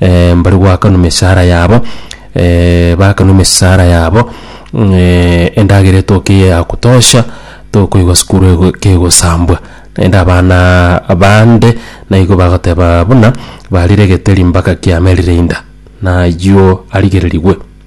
eh, mbare goakanwa emesara yabo eh, bakanwa emesara yabo mm, eh, endagera etoke eye ya kutosha tokoigwa sukuru ego- kegosambwa naende abana bande naigo bagoteba buna barire egeteri mpaka kiamerire inda nayio arigererigwe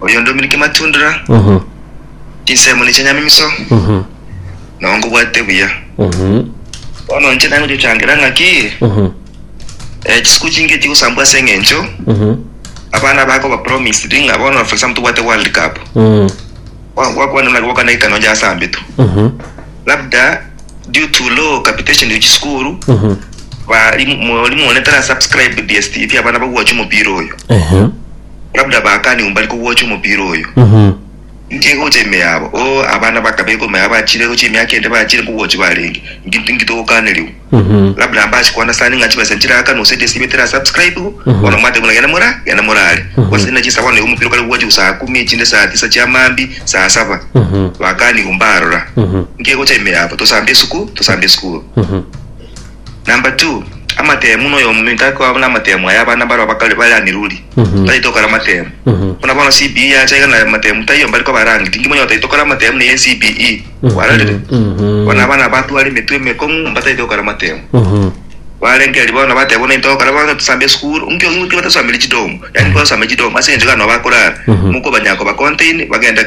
Oyo ndomire kematundura, chinsemo nichia nyamimiso, nao nkobwate buya. Bono inche naye gochochangira ng'aki, eh, chisuku chinge chigosambwa ase eng'encho abana bako ba promised ng'a bono for example tobwate world cup Gwa- gwakwana ng'a gwakwana ekano njasambetu labda due to low capitation ya chisukuru bari mwalimu one tara subscribe dstv abana bagwacha omopira oyo Labda bakane ombari kogwocha omopira oyo. Inki egocha ime yabo? O, abana bakabeka ime yabo bachire egocha emiaka ende bachire nkogwochi barenge. Inki inki togokanerigwa? Labda mbache koana sana ing'a chibesa nchiraaka nonsi eria esibe tera subscribigwa. Bono mwateba buna genda mora, genda morare. Gwase ninache insa bono igo omopira okare kogwocha gu saa kumi echinde saa tisa chia maambi, saa saba. Bakani igo mbarora. Inki egocha ime yabo? Tosambe esukuru, tosambe esukuru. Number two, amatemu noyominto akoba namatemu aya abana baroo bakare bare aniruri tari tokora amatemu buna bono CBE yacha iga na amatemu taiyo mbari koba rangi tingi monyote tari tokora amatemu neye CBE kwarorire bono abana batware emetwe emekong'u mbatari tokora amatemu barenge eri bono bateba buna intokora bono tusamba esukuru nkio nkio batasambire chidomu yani twasamba chidomu ase enchera nobakorara mokobanya koba contain bagende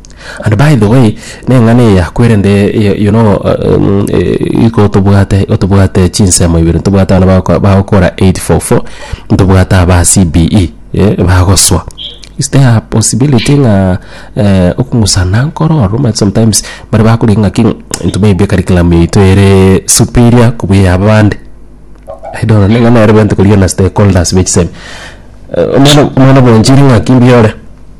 And by the way, neng'ana eya kwerende y- you know um, eh, iko tobwate otobwate chinsemo ibere ntobwate abana bagoko- bagokora 844 ntobwate aba CBE eh, bagoswa is there a possibility ng'a eh, okong'usana nkoro ororo omanyete sometimes bare bakorigi ng'aki into maybe curriculum yaito ere superior kobua eya abande I don't know neng'ana yarobete korigia na stakeholders b'echisemi Eh, omwana omwana bwanchire ng'aki mbiore.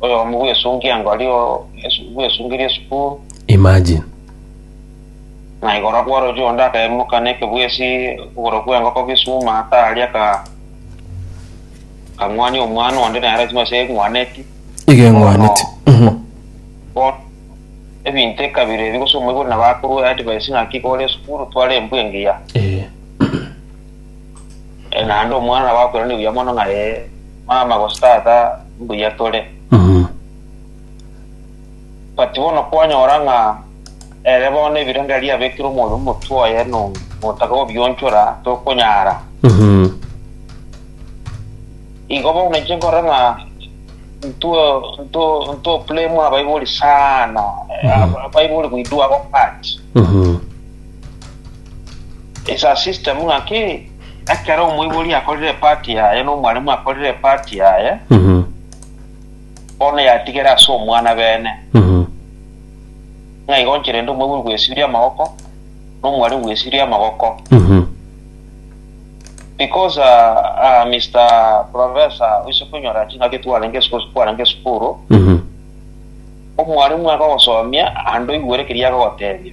Oyomo bw'esunkia ngori o esu- bw'esunkirie esukuru, Imagine. na igoro kw'orochio onde akaimoka nekebwesi okogoro kw'engoko gisuma ataria ka kang'wania omwana onde nere ching'o ase eng'waneti. Iga eng'waneti. Mhm. Bono ebinto ekabire ebi gose omoibori nabo akorwa advice ng'aki kore esukuru tware embwa engiya. Eh. Eh, naende omwana nabo akoirana buya mono ng'a eh, mama gose tata mbuya tore Mhm. but bono kwanyora ng'a ere bono ebirengererio abekire omori omotwe oye no- notaka gobionchora tokonyara Mhm. igo bono inche nkore ng'a nto- nto- ntoplay mwa baibori sana Eh, Mhm. aba- baibori goidua abo part Mhm. It's a system ng'aki ekero omoibori akorire epati yaye na omwalimu akorire epati yaye Mhm. bono yatigere ase omwana bene Mhm. ng'a igo nche rende omoibori gwesibiria amagoko na omwalimu gwesibiria amagoko Mhm. because uh, uh, Mr. Professor oise konyora ching'aki twarenge esukuru twarenge esukuru Mhm. omwalimu agogosomia ande oigwere keria agogotebia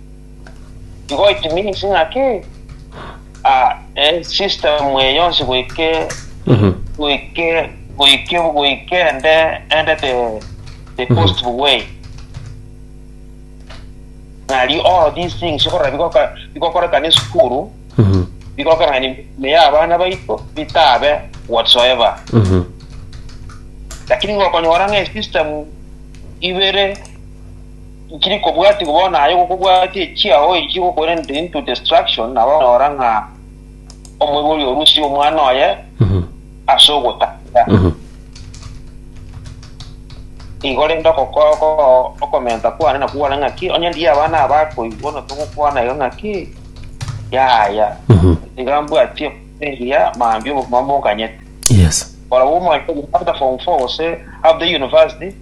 Igo it means ng'aki ah, eh, system eye yonsi goike goike goike goike ende ende the the positive way nari all of these things ikorora bigoka bigokorekana esukuru bigokorekana ni meye abana baito bitabe whatsoever lakini ngokonyora ng'e system ibere Nkiri kobwatigwa bono aye gokobwatia echiao echio gokoerentire into destruction, nabo onyora ng'a omoibori orusie omwana oye ase ogotaka. Igo rende oko- oko- okomenta kwane nakwo gware ng'aki, onye ndiye abana aba akoigwa, bono togokwana iga ng'aki, yaya. Iga mbwatie eria mambia obogima mbokonyete. Yes. Barabwo omwaka after form 4 gose after university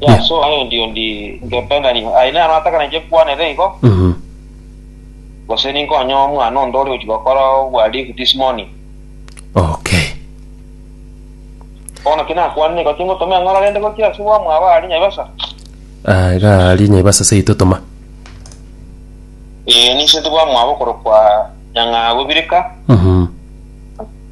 Yesu aye ndio ndi ngependa nigo aye nano atakana nje kwanere igo Mhm. gose ninkonye omwana onde ore ochi gokora obwalifu this morning Okay. bono ki nakwanire igo tingotoma eng'ora rende gochia ase bwamwaba aria nyaibasa Ah, iga ari nyaibasa seito toma. ee ninsete bwamwaba okorokwa nyang'aa bobireka Mhm.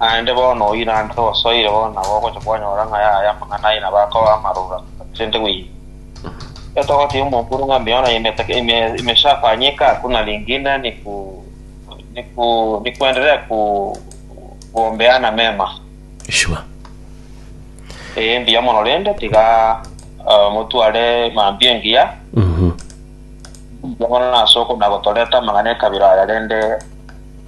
Naende bono oirandere osoire bono nabo ogocha kwanyora ng'a yaya amang'ana aye na bakoba amaroro ase President Mwinyi. Iga togoteebia omokuru ng'a mbiao na imeteke imeshafanyika hakuna lingine ni kuendelea kuombeana mema. Sure. Ee mbuya mono rende tiga motware mambia engiya. Mbuya mono ase okonagotoreta amang'ana ekabira aya rende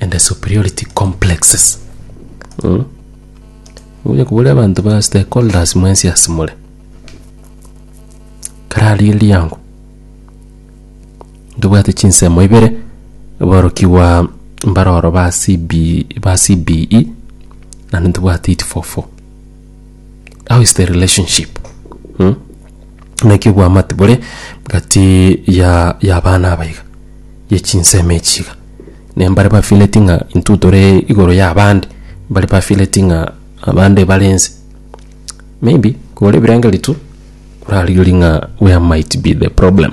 and the superiority complexes mm? oye kubore abanto ba stakeholders mwensi ase more karari eriango ntobwate chinsemo ibere aborokigwa mbaroro ba CB, ba CBE nandi ntobwate it for four How is the relationship? Hm? Naki obwamate bore gati ya y'abana aba iga, ye chinsemo echi iga. Ne mbare ba feeleti ng'a intwe tore igoro y'abande, mbare ba feeleti ng'a abande bare ense. Maybe kore ebirengererio tu, korarigerie ng'a where might be the problem.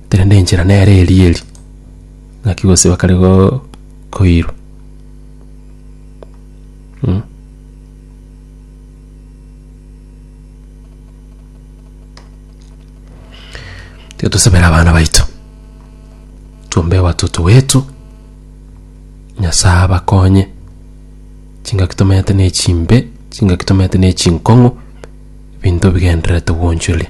Korende enchera nere eria eria, naki gose bakare go- koirwa mm. Tiga tosabere abana baito, twombe watoto wetu, Nyasaye abakonye, chingaki tomenyete ne chimbe, chingaki tomenyete ne chinkong'u, binto bigendererete gwonchoria.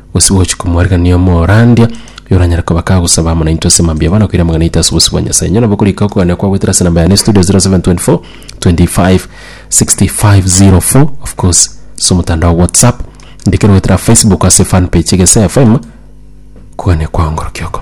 gose gochia komwarigia omorandia, oyo oranyare koba kagosaba amo naintwe ase mambia aba, na koira amang'ana aito ase obosio bwa Nyasae. Inche nabo korika okogania kwagwetire ase enamba yane studio 0724256504 of course ase omotandao whatsapp, ndikero goetera Facebook ase fan page Egesaia FM, okogania kwao ngorokia oko.